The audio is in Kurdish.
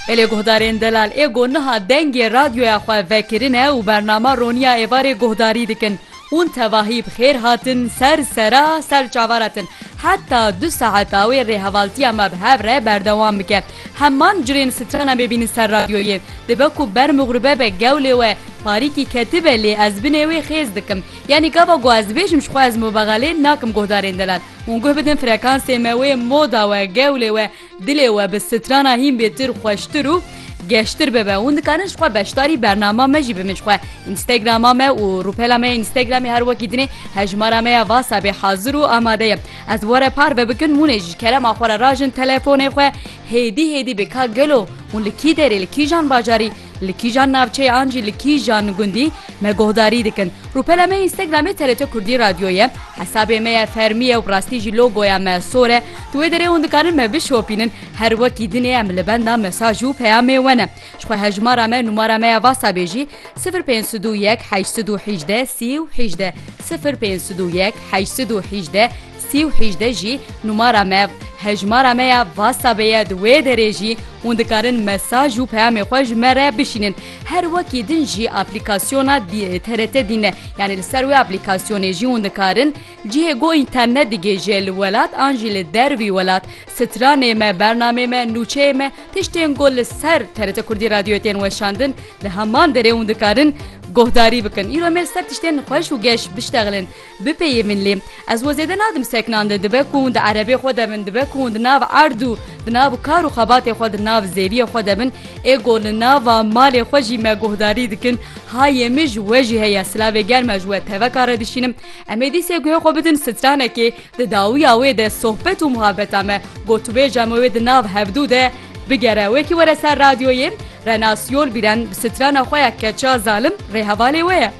Belê guhdarên Delal Êgo niha dengê radyoya xwe vekirine û bernama Roniya Êvarê guhdarî dikin. Hûn tevahî bi xêr hatin ser sera ser çavara tin. Heta du saeta wê rêhevaltiya me bi hev re berdewam bike. Heman curên strana me bînin ser radyoyê. Dibe ku ber mixribe be gewlê we parîkî ketibe lê ez binê wê xêz dikim. Yanî gava ku ez dibêjim ji xwe ez mubexelê nakim guhdarên Delal. Hûn guh bidin frekansê me wê moda we, gewlê we, dilê we bi strana hîn bêtir xweştir û geştir bibe. Hûn dikarin ji xwe beşdarî bernama me jî bibin ji xwe Instagrama me û rûpela me ya Instagramê her wekî dinê hejmara me ya WhatsAppê hazir û amade ye. Ez were parve bikin hûnê ji kerema xwe re rajin telefonê xwe hêdî hêdî bê ka gelo hûn li kî derê li kîjan bajarî Li kîjan navçeyan jî li kîjan gundî me guhdarî dikin. Rûpela me Instagramê TRT Kurdî Radyo ye. Hesabê me ye fermî ye û bi rastî jî logoya me sor e. Di wê derê hûn dikarin me bişopînin. Her wekî dinê em li benda mesaj û peyamê we ne. Ji xwe hejmara me numara me ya WhatsAppê jî sifir pênc sed û yek heşt sed û hîjdeh sî û hîjdeh sifir pênc sed û yek heşt sed û hîjdeh Sî û hîjdeh jî numara me, hejmara me ya WhatsAppê ye di wê derê jî hûn dikarin mesaj û peyamê xwe ji me re bişînin. Her wekî din jî aplîkasyona TRT din e yanî li ser wê aplîkasyonê jî hûn dikarin cihê ku înternet digihêje li welat an jî li dervî welat stranê me, bernameyê me, nûçeyê me, tiştên ku li ser TRT Kurdî Radyoyê tên weşandin di heman derê hûn dikarin guhdarî bikin. Îro em ê li ser tiştên xweş û geş biştexilin. Bipeyê min lê. Ez we zêde nadim seknan de dibe ku hûn di erebê xwe de bin, dibe ku hûn di nav erd û di nav kar û xebatê xwe, di nav zêriyê xwe de bin, ê ku li nava malê xwe jî me guhdarî dikin, ha yê min ji we jî heye, silavê germ e ji we teveka re dişînim. Em ê dîsê guhê xwe bidin stranekê, di dawiya wê de sohbet û muhabeta me, gotûbêja me wê di nav hevdû de bigere. Wekî were ser radyoyê, Renas Yolbîren bi strana xwe ya Keça Zalim rê hevalê we ye.